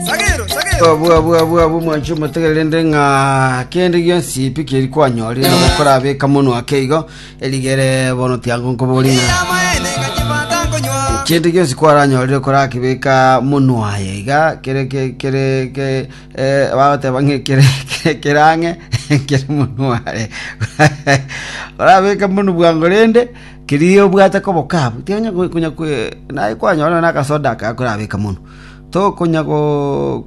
Sagero, sagero. Abwa abwa abwa abwa mwancho mutegererende ng'a kende gionsi pi keri kwanyorire na gokorabeka mono ake igo erigere bono tiango nkobori ng'a Ira maene ngachibanda nkonywa. kende gionsi kwaranyorire korakibeka mono aye iga kere ke kere ke eh, bagoteba ng'a kere kere kerang'e kere mono are orabeka mono bwango rende Keri obwate kobokabu, tiga konya naye kwanyora nonya nakasoda aka gakorabeka mono. Tokonya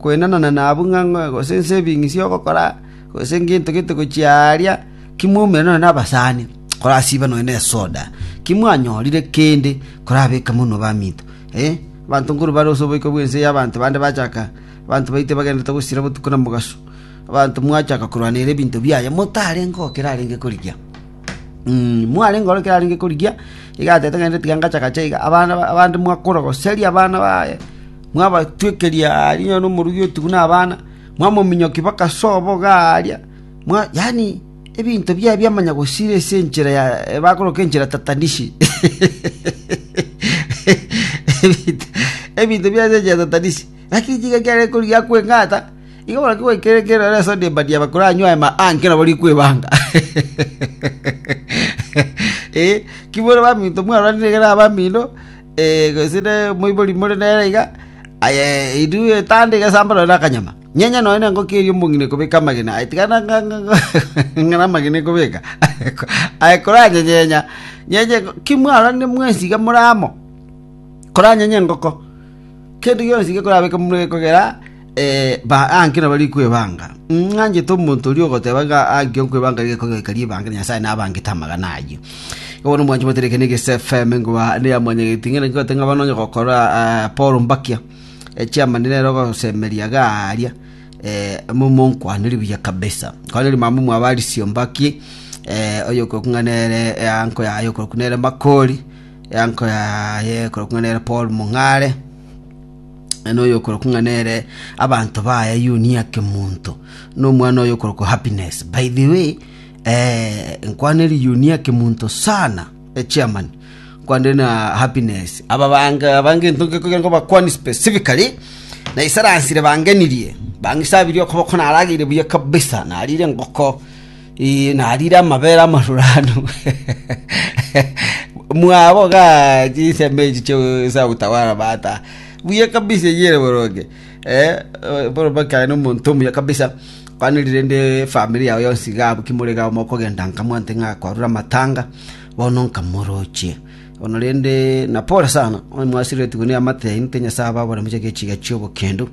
kwenananana abwo ng'a gose ense ebing'isi ogokora, gose ngento gete gochia aaria, kimoumera nonya nabasani korasiba nonya nesoda. Kimwanyorire kende korabeka mono baminto. Abanto nkorwa bare ase oboiko bw'ense ya abanto bande bachaka, abanto baito bagenderete gosira botuko na mogaso, abanto mwachaka korwanera ebinto biaye, motarenge ogo kerarenge korigia. mware ngoro ekero arenge korigia iga atete ng'a tiga ngachagache iga abana abande mwakorogoseria abana baye mwabatwekeria aria onye nomorugi otigu buna abana mwamominyokia mpaka sobo iga aaria mwa yaani ebinto biaye biamanya gosira ase enchera ya bakoroka enchera tatanishi ebinto ebinto biaye ase enchera tatanishi lakini tiga ekiagera korigia akweng'ata. Igo barabwo goikera ekeene ere Sodom na Ebadiaba koranywa aye maanki nabo rikwebanga. Ee, ki more baminto mwaroranie rigena abamino, ee, gose ne moibori more nere iga, aye edu etanda egesamba nonye na akanyama. Nyenya nonye na engoko eria omong'ina ekobeka amagena, aye tiga ng'a- ng'a- ng'a- ng'a- ng'a namagena ekobeka. Aye koranyenyenya, nyenya ki mwaroranie mwensi iga more amo, koranyenye engoko, kende gionsi gekorabeke mure kogera. Ba anke nabo rikwebanga. Ng'anchete omonto oria ogoteba ng'a anke okwebanga riga ekogoika ribanga na Nyasae nabangete amagana ayio. Igo bono mwanchi motereke ne Gese FM ngoba ne ya mwanyageti ng'ana ngote ng'a banonya gokora ah, Paul Mbakia chairman nero gosemeria garia eh, momonkwaneri buya kabisa kwaneri mama mwaba Alice Ombaki eh, oyokoroku ng'a nere eh, anko yaye oyokoroku nere Makori eh, anko yaye oyokoroku ng'a nere Paul Mong'are na noyokorokwa ng'a nere abanto baye Yunia Kemonto, na omwana oyokorokwa Happiness. By the way, eh, nkwaneri Yunia Kemonto sana, eh, chairman, nkwaneri na Happiness. Aba bange abange ento ngekogera ngo bakwani specifically, na isaransire bangenirie, bangisabirie okoboko narageire buya kabisa, narire ngoko, narire amabera amaruranu, mwaboga chinsemo echi chiosa gotawara bata buya kabisa eyio ere boronge bono mpaka nomonto omuya kabisa mani rende famiri yago yonsi iga abwo ki more iga mokogenda nkamwante ng'a kwarure amatanga bono nkamorochie. Korende napore sana, onye mwasireretigwe neamate yaino, tenyasae ababore mochake echiga chi'obokendo,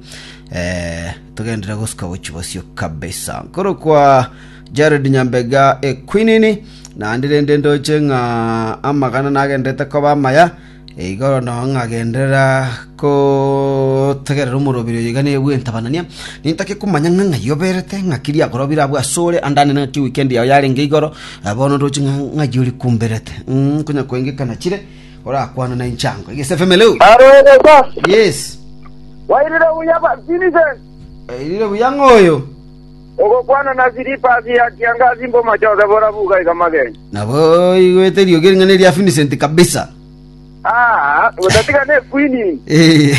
togenderere gosuka gochia bosio kabisa. Nkorokwa Jared Nyambega Equinini, naende rende ndoche ng'a amagana nagendererete koba amaya, igoro nao ng'agenderera Gotegerera omorobiri oyo igane bw'entabanania, nintake komanya ng'a ng'ai oberete, ng'aki riakorobire abwo asore, andanere ng'aki weekend yao yarenge igoro, eh, bono ndoche ng'a ng'ai ore kumberete. Mm, konya koengekana chire, orakwana na inche ango. Egese FM, hello. Aro egesa Yes. wairire buya ba Vincent Erire buya ng'oyo. ogokwana na silipas ya kiangazi mbomachote borabuga iga mageni Nabo igwete eriogi ring'ana eria Vincent kabisa. Aa, otatiga nekwinini. Eh,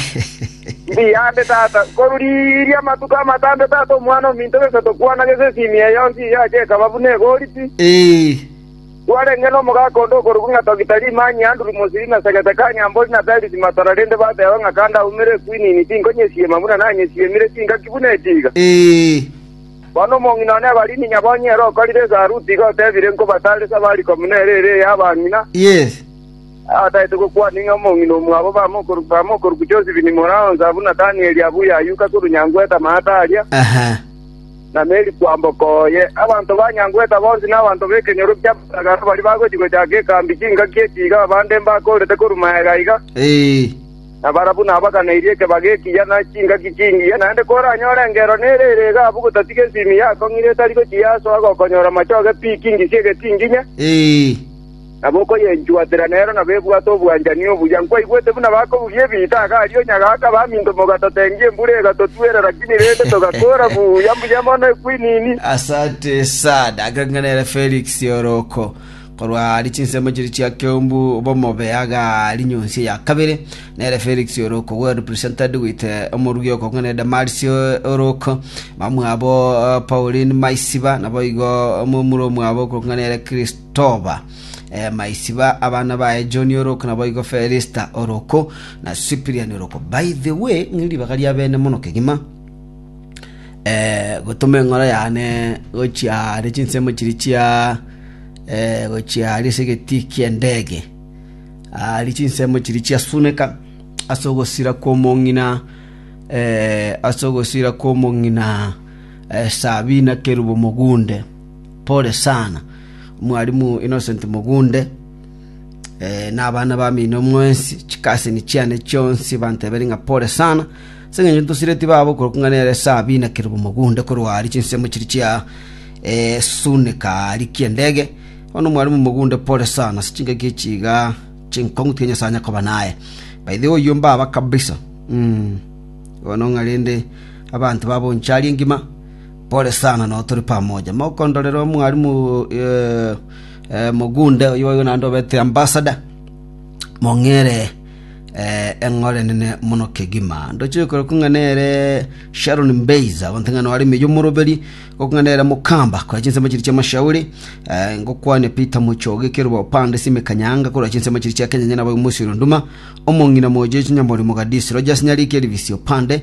Mbuya ande tata, korwa riria amatuko amatambe tata omwana ominto gese tokwana gese esimi eye yonsi eyio acha ekaba buna egori pi. eh, Twarenge nomogaka onde okorokwa ng'a Togita Rimani, Andrew Mosiri na Segete Kanyambori na Peris Matora rende bateba ng'a kandaumere ekwinini tinkonyesiema buna nanyesiemire chingaki buna etiga. eh, Bono omong'ina one Ebalini Nyabonyi ere okorire esaruti iga otebire nkobataresa bari komuna ere ere ey'abang'ina, yes. Abatagete gokwana ing'e omong'ina omwabo bamwe okoruku Josifi ni mora onsi abwo Nathanieli abwo yayuka korwa nyangweta amaata aria, na Meri kwamboka oye. Abanto ba nyangweta bonsi na abanto b'ekenyoro ki'abatagara baria bagochia gochaka ekambi chingaki echi iga abande mbakoorete korwa magega iga, na barabwo nabaganeirie ekebago ekiya na chingaki chingiya. Naende koranyore engero nere ere iga abwo gotatiga ensimi yakong'ire etari gochia ase ogokonya oramachoge pi kingisie getinginya. nabo okoyenchuotera nero nabo ebwate obwanchani obuya. Nkwaigwete buna bakobugia ebiita aka aria onyagaaka baminto mogatotengia embura egatotwera rakini rende togakora buya mbuya mono ekwinini. Asante sana Agang'anere Felix Oroko korwa ari chinsemo chiri chia Keumbu bomobe agari nyonsi ya kabere nere Felix Oroko well represented with eh, omorugi okong'anere Damaris eh, Oroko mamwabo eh, Pauline Maisiba nabo igo omomura omwabo okong'anere Christ Toba, Maisiba, abana baye John oroko naboigo Felista oroko, na Cyprian oroko. By the way, ng'iri ribaga ria bene mono kegima, eh, gotoma eng'oro yane gochia are chinsemo chiri chia eh, gochia are ase egetii ki'endege ari chinsemo chiri chiasuneka ase ogosira kw'omong'ina eh, ase ogosira kw'omong'ina eh, Sabina Kerubo Mogunde Pore sana, Mwarimu Innocent Mugunde, na abana bamino mwensi, chikaseni chiane chionsi banteberie ng'a pore sana, ase engencho ntosireti babo okorokwa ng'a nere Sabina Kerubo Mugunde korwa aria chinsemo chiria chia esunika aria ki'endege. Bono Mwarimu Mugunde pore sana ase chingaki echi iga chinkong'u tiga Nyasae anye koba naye. By the way oyio mbaba kabisa, mh. Bono ng'a rende abanto baboncha aria engima. Pore sana, nao tore pamoja. Mokondorere omwarimu mogunde oyio boigo naende obete ambasada, mong'eere eng'ora enene mono kegima. Ndochire korokwa ng'a nere Sharon Mbeiza, abanto ng'a nore ime y'omoroberi, ngokong'a nere Mukamba korwa chinsemo chiria chi'amashauri, eh, ngokwane Peter Mochoge ekeroba opande Simi Kanyanga korwa chinsemo chiria chia Kenya onye nabo Mosiri Onduma, omong'ina moyo Jesu Nyamori Mogadisi, Rogers Nyariki Elvis opande